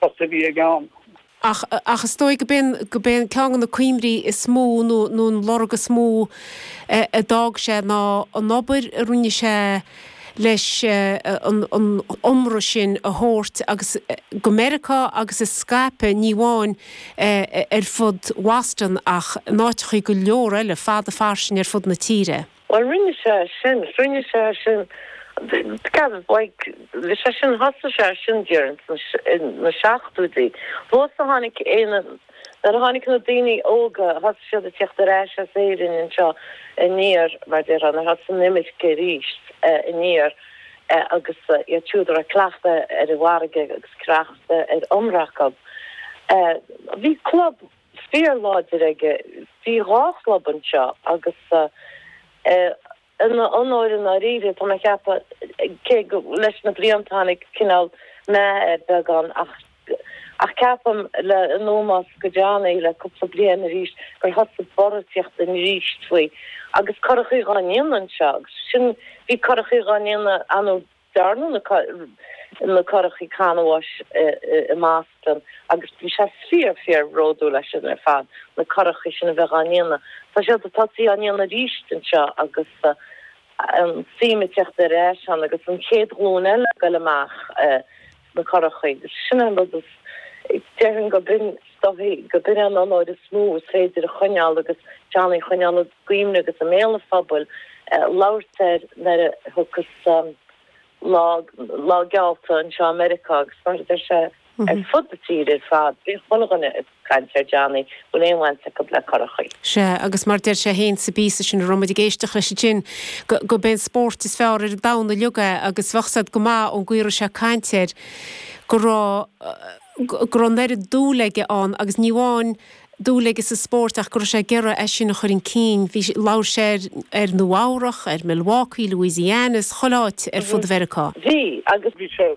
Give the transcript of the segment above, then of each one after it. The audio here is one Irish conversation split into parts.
post a bhí aige ann. Ach, ach is dóigh go b'é, go b'é an ceann go na cuimhní is mó nó, nó an lorg is mó a d'fhág sé ná an obair a rinne sé leis an, an iomramh sin a thabhairt agus, go Meiriceá agus a scaipeadh ní amháin ar fud Bhoston ach in áiteachaí go leor eile fada fairsing ar fud na tíre. Bhuel, rinne sé é sin, rinne sé é sin, gabh, like, bhí sé sin, thosaigh sé é sin déarfainn sna, sna seachtóidí. Thuas a tháinig Éanna, nuair a tháinig na daoine óga, thosaigh siad ag tíocht ar ais as Éirinn anseo aniar, mar déarfá, nuair thosaigh an imirce aríst aniar agus iad siúd a raibh cleachtadh ar an bhfarraige agus cleachtadh ar iomramh acu. Bhí club. fíorláidir aige bhí dhá chlub anseo agus in a onóir i ndáiríre tá mé a cheapadh cé go leis na blianta tháinig cineál meath air beagán ach ach ceapaim le i ndó más go déanaí le cúpla bliain arís gur thosaigh borradh ag tíocht aríst faoi agus curachaí dhá ndéanamh anseo agus sin bhí curachaí dhá ndéanamh ann dearnadh na curachaí canbháis i mBoston agus bhí sé fíor fíor bhródúil as sin ar fad, na curachaí sin a bheith á ndéanamh. Tá siad ag tosaí á ndéanamh aríst anseo agus an suim ag tíocht ar ais ann agus an chéad ghlúin eile ag goil amach. na currachaí. Sin é an rud is, déarfainn go b'in is dóigh, go b'in an onóir is mó is féidir a choinneáil agus Johnny a choinneáil i gcuimhne agus i mbéal an phobail, labhairt air nuair a thiocfas lá, lá geallta anseo i Meiriceá agus mar a deir sé ar fud na tíre ar fad, beidh chuile dhuine ag. Caint le Johnny, a bhfuil aon bhaint acub le currachaí? Sea, agus mar deir sé fhéin sa bpíosa sin a raibh muid ag éisteacht leis ansin, go, b'é an spórt is fearr ar an domhan uilig é agus bheadh a fhios agat go maith ón gcaoi a raibh sé ag caint air go raibh, go raibh an oiread dúil aige ann agus ní amháin dúil aige sa spórt ach go raibh sé ag iarraidh é sin a chur chun cinn. Bhí, labhair sé ar, ar Nua Eabhrach, ar Milwaukee, Louisiana, is chuile áit ar fud Mheiriceá. Bhí, agus. Bhí sé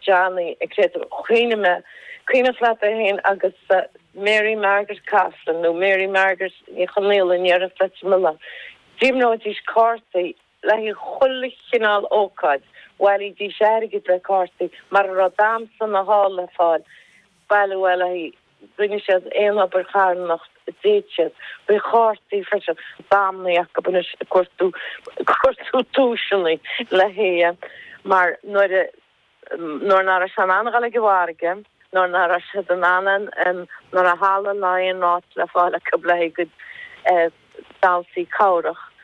Johnny, Credo, cuimhním, cuimhneach leat é féin agus Mary Margaret Coughlan nó Mary Margaret Ní Chonaola i ndéarfainn leat sa milleán. D'imreoidís cártaí le haghaidh chuile chineál ócáid, bhailídís airgead le cártaí mara raibh damhsa ná hall le fáil, bailiú é le haghaidh. rinne siad aon obair charthanacht a d'fhéad siad, thrí chártaí freisin, b'amhlaidh acu anois cuartú, cuartú duaiseanna le haghaidh é mar nuair a, nuair ná raibh sé in ann dul ag an mhargadh, nuair ná raibh siad in ann an, an, nuair a halla ná aon áit le fáil acu le haghaidh a gcuid damhsaí cabhrach,